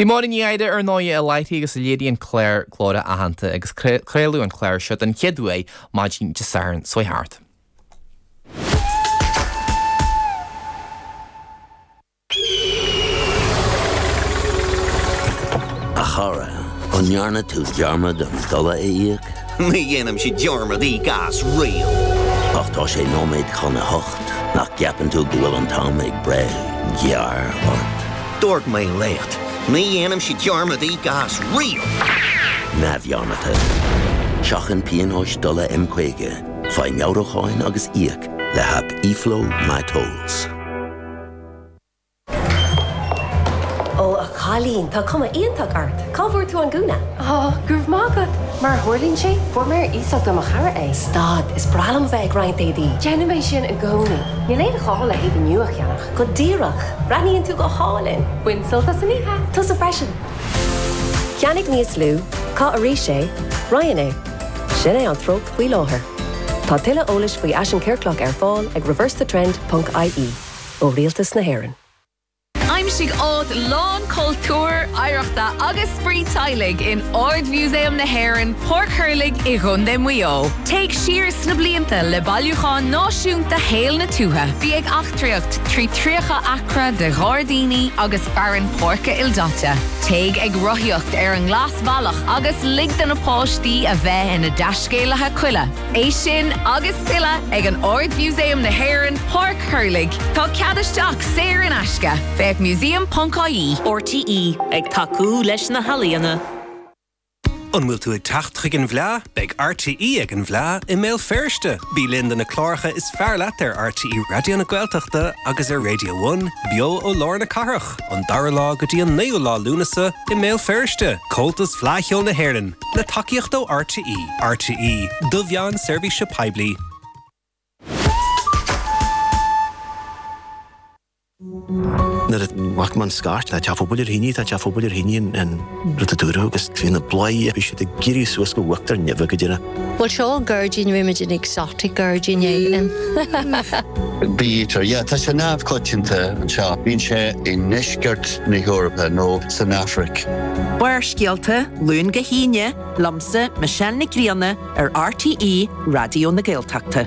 B'í Máirín Ní Ghadhra, ar ndóigh, a láithrigh agus a léirigh an clár, Glórtha Aitheanta agus craoladh an clár seo den chéad uair maidin Dé Sathairn seo thart. A chara, an ndearna tú dearmad an dola a íoc? Ní dhéanaimse dearmad i gcás riamh. Ach tá sé nóiméad chun a hocht, nach gceapann tú go bhfuil an t-am ag breith gearr ort? Dúirt mé leat, ní dhéanaimse dearmad i gcás riamh. Neamhdhearmadta. Seachain pionóis dola M50, faigh meabhrúcháin agus íoc le haip eFlow My Tolls. Ó, a chailín, tá cuma iontach ort. Cá bhfuair tú an gúna? Ó, go raibh maith agat! Mar a tharlaíonn sé, fuair mé ar iasacht ó mo chara é. Stad, is breá liom a bheith ag roinnt éadaí! Déanaim é sin i gcónaí. Níl aon ghá le héadaí nua a cheannach. Go díreach! Breathnaíonn tú go hálainn! Bain sult as an oíche! Tusa freisin! Ceannaigh níos lú, caith arís é, roinn é. Sin é an treocht faoi láthair. Tá tuilleadh eolais faoi fhaisean ciorclach ar fáil ag reversethetrend.ie. ó Rialtas na hÉireann. Aimsigh áit lán cultúir, oidhreachta agus spraoi teaghlaigh in Ard-Mhúsaem na hÉireann, Páirc Thurlaigh i gContae Mhaigh Eo. Téigh siar sna blianta le Bailiúchán Náisiúnta Shaol na Tuaithe. Bí ag eachtraíocht trí 30 acra de ghairdíní agus fearann páirce ildaite. Téigh ag rothaíocht ar an nGlasbhealach agus lig do na páistí a bheith ina dtaiscéalaithe coille. É sin agus tuilleadh ag an Ard-Mhúsaem na hÉireann, Páirc Thurlaigh. Tá cead isteach saor in aisce, féach museum.ie. RTÉ ag tacú leis na healaíona. An bhfuil tú ag teacht chuig an bhFleá? Beidh RTÉ ag an bhFleá i mBéal Feirste! Bí linn do na cláracha is fearr leat ar RTÉ Raidió na Gaeltachta agus ar Radio One beo ó lár na cathrach. An dara lá go dtí an naoú lá Lúnasa i mBéal Feirste, Comhaltas Fleadh Cheoil na hÉireann, le tacaíocht ó RTÉ, RTÉ, do mheáin seirbhíse poiblí. Nuair a. Mac Mon scairt, tá teach an phobail ar thine, tá teach an phobail ar thine an. rud a dúradh, agus bhí na bladhairí, bhí siad ag éirí suas go huachtar neimhe go dtí na. Bhuel, seo gur éan, rimid in exotic, gur éan é an bee-eater, yeah, tá sé neamhchoitianta anseo. Bíonn sé i ndeisceart na hEorpa nó san Afraic. Barrscéalta, Luan go hAoine, liomsa, Michelle Nic Grianna, ar RTÉ Raidió na Gaeltachta.